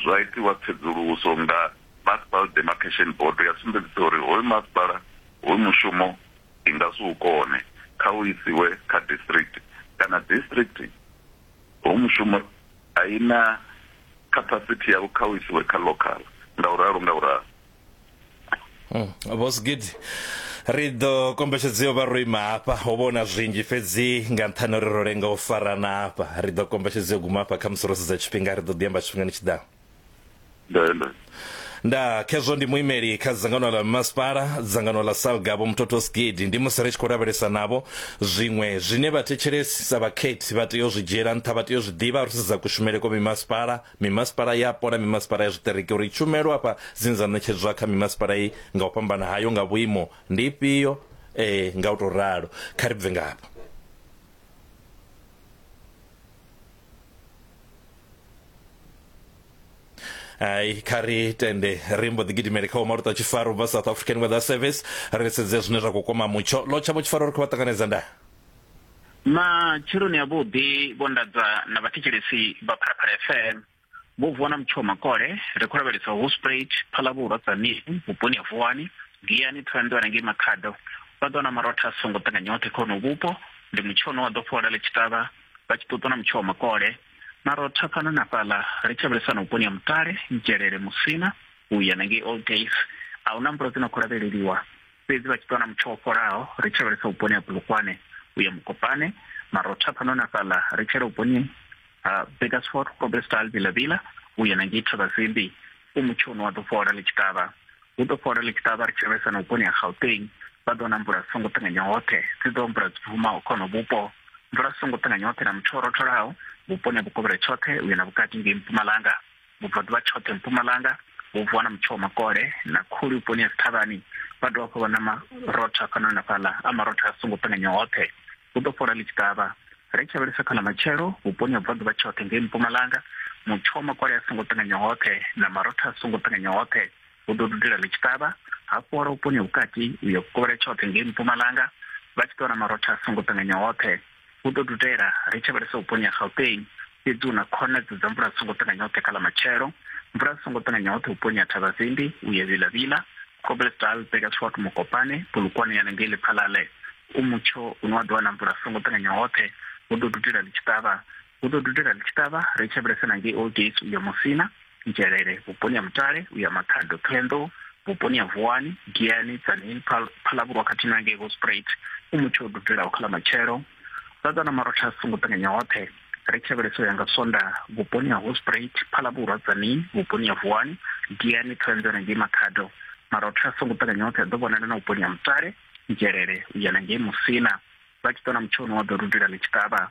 Zwa itiwa tsedzuluso nga Masipala Demarcation Bodo ya sumbedzisa uri hoyu masipala hoyu mushumo i nga si u kone, kha u isiwe kha district kana district hoyu mushumo a i na capacity yawo kha u isiwe kha local, nga u ralo nga u ralo. Boss Gid ri ḓo kombetshedzea vha ro ima hafha ho vhona zwinzhi fhedzi nga nṱhani uri ro lenga u farana hafha ri ḓo kombetshedzea guma hafha kha musi ro sedza tshifhinga ri ḓo ḓi amba tshifhingani tshi ḓaho Ndele. nda khezwo ndi muimeli kha dzangano ḽa masipala dzangano ḽa salga vho muthotho skidi ndi musi ri tshi khou lavhelesa navho zwiṅwe zwine vhathetshelesi sa vhakhethi vha tea u zwi dzhiela nṱha vha tea u zwi ḓivha ri sedza kushumele kwa mimasipala Mimasipala yapo na mimasipala ya zwiṱereke uri tshumelo afha dzine dza ṋetshedzwa kha mimasipala iyi nga u fhambana hayo nga vhuimo ndi ifhio eh, nga u tou ralo kha ri bve ngafho ai kha ri tende ri mbo ḓi gidimele kha umaluta tshifaro bva south african weather service ri sedze zwine zwa khou kwama mutsho lo tshavho tshifaro ri khou vha ṱanganedza ndaa Matsheloni avhuḓi vho nḓadza na vhathetshelesi vha Phalaphala FM. Vho vuwa na Mutshiwa Makole, ri khou lavhelesa Hospruit, Phalabulwa, Tzaneen, vhuponi ha Vuwani, Giyani, Thohoyanḓou na ngei Makhado. Vha ḓo na marotha a songo ṱanganya oṱhe kha honoho vhupo. Ndi Mutshiwa une wa ḓo fhola ḽi tshi ṱavha, vha tshi ṱuṱwa na Mutshiwa Makole. Marotha fhano na fhaḽa, ri tshi lavhelesa na vhuponi ha Mutale, Ntshelele, Musina, u ya na ngei Old Days. A hu na mvula dzi no khou lavheleliwa. fhedzi vha tshi ṱuwa na mutsho wo fholaho ri tshi lavhelesa vhuponi ha bulukwane u ya mukopane marotha fhano na fhaḽa ri tshela vhuponi ha bakersford robertstal vilavila u ya na ngei thavhasimbi u mutsho une wa ḓo fhola ḽi tshi ṱavha hu ḓo fhola ḽi tshi ṱavha ri tshi lavhelesa na vhuponi ha gauteng vha ḓo na mvula dzi songo ṱanganya hoṱhe dzi ḓo mvula dzi bvumaho khono vhupo mvula dzi songo ṱanganya hoṱhe na mutsho wo rotholaho vhuponi ha vhukovhela tshoṱhe u ya na vhukati ngei mpumalanga Vhubvaḓuvha tshoṱhe Mpumalanga hu vuwa na mutsho wa makole na khuli vhuponi ha Sithavhani, vha dovha hafhu vha na marotho afhanoni na fhaḽa, a marotho a songo ṱanganya hoṱhe. Hu ḓo fhola ḽi tshi ṱavha. Ri tshi lavhelesa kha ḽa matshelo, vhuponi ha Vhubvaḓuvha tshoṱhe ngei Mpumalanga, mutsho wa makole a songo ṱanganya hoṱhe na marotho a songo ṱanganya hoṱhe, hu ḓo dudela ḽi tshi ṱavha, ha fhola vhuponi ha vhukati u ya vhukovhela tshoṱhe ngei Mpumalanga, vha tshi ḓo vha na marotho a songo ṱanganya hoṱhe. Hu ḓo dudela, ri tshi vhalesa vhuponi ha Gauteng, fhedzi hu na khonadzeo dza mvula dzi songo ṱanganya hoṱhe kha ḽa matshelo. Mvula dzi songo ṱanganya hoṱhe vhuponi ha Thabazimbi, Uyevila Vila, Kobblesdal, Burgersfort, Mokopane, Polokwane ya na ngei Lephalale. U mutsho une wa ḓo wana mvula dzi songo ṱanganya hoṱhe, hu ḓo dudela ḽi tshi ṱavha, hu ḓo dudela ḽi tshi ṱavha ri tshi vhulesa na ngei old gates uya musina nzhelele vhuponi ha mutale uya makhado ṱhohoyanḓou vhuponi ha vuwani giani tsanini phalavhurwa khathihi na ngei hosprit u mutsho o dudelaho kha ḽa matshelo ḓaḓa na marotha a songo ṱanganya hoṱhe ri tshi vhulesa uya nga sonda vhuponi ha hosprit phalavhurwa tsanini vhuponi ha vuwani giani ṱhohoyanḓou na ngei makhado marotha a songo ṱanganya hoṱhe a ḓo vhonala na vhuponi ha mutale nzhelele uya na ngei musina vha tshi ṱona mutsho une wa ḓo dudela ḽi tshi ṱavha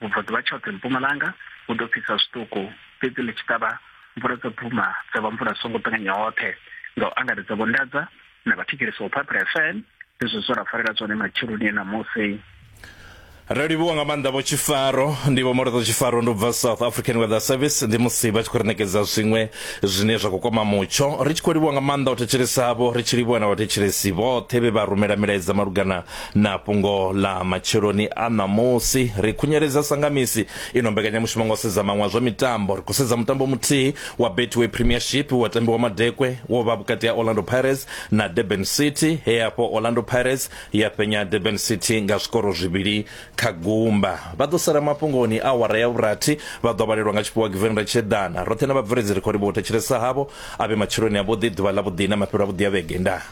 Vhubvaḓuvha tshoṱhe Mpumalanga hu ḓo fhisa zwiṱuku, fhedzi ḽi tshi ṱavha, mvula dza bvuma dza vha mvula songo ṱanganya hoṱhe. Nga u angaredza Vho Ndadza na vhathetshelesi vho Phaphela FM, ndi zwe zwa ra farela zwone matsheloni e ṋamusi. Ri livhuwa nga maanḓa vho Tshifaro. Ndi Vho Molodza Tshifaro, ndi u bva South African Weather Service. Ndi musi vha tshi khou ri ṋekedza zwiṅwe zwine zwa khou kwama mutsho. Ri tshi khou livhuwa nga maanḓa u thetshelesa havho, ri tshi livhuwa na vhathetshelesi vhoṱhe vhe vha rumela milaedza malugana Na fhungo ḽa matsheloni a ṋamusi ri khunyeledza sangamisi ino mbekanyamushumo nga u sedza maṅwe a zwa mitambo. Ri khou sedza mutambo muthihi wa Betway Premiership wa tambiwa madekwe wo vha vhukati ha Orlando Pirates na Durban City he hafho Orlando Pirates ya fhenya Durban City nga zwikoro zwivhili kha gumba. Vha ḓo sala mafhungoni a awara ya vhurathi vha ḓo vhalelwa nga tshifhiwa Giveni Ratshiedana. Roṱhe na vhabveledzi ri khou livhuwa u thetshelesa havho. A vhe matsheloni avhuḓi, ḓuvha ḽavhuḓi na mafhelo avhuḓi a vhege. Ndaa.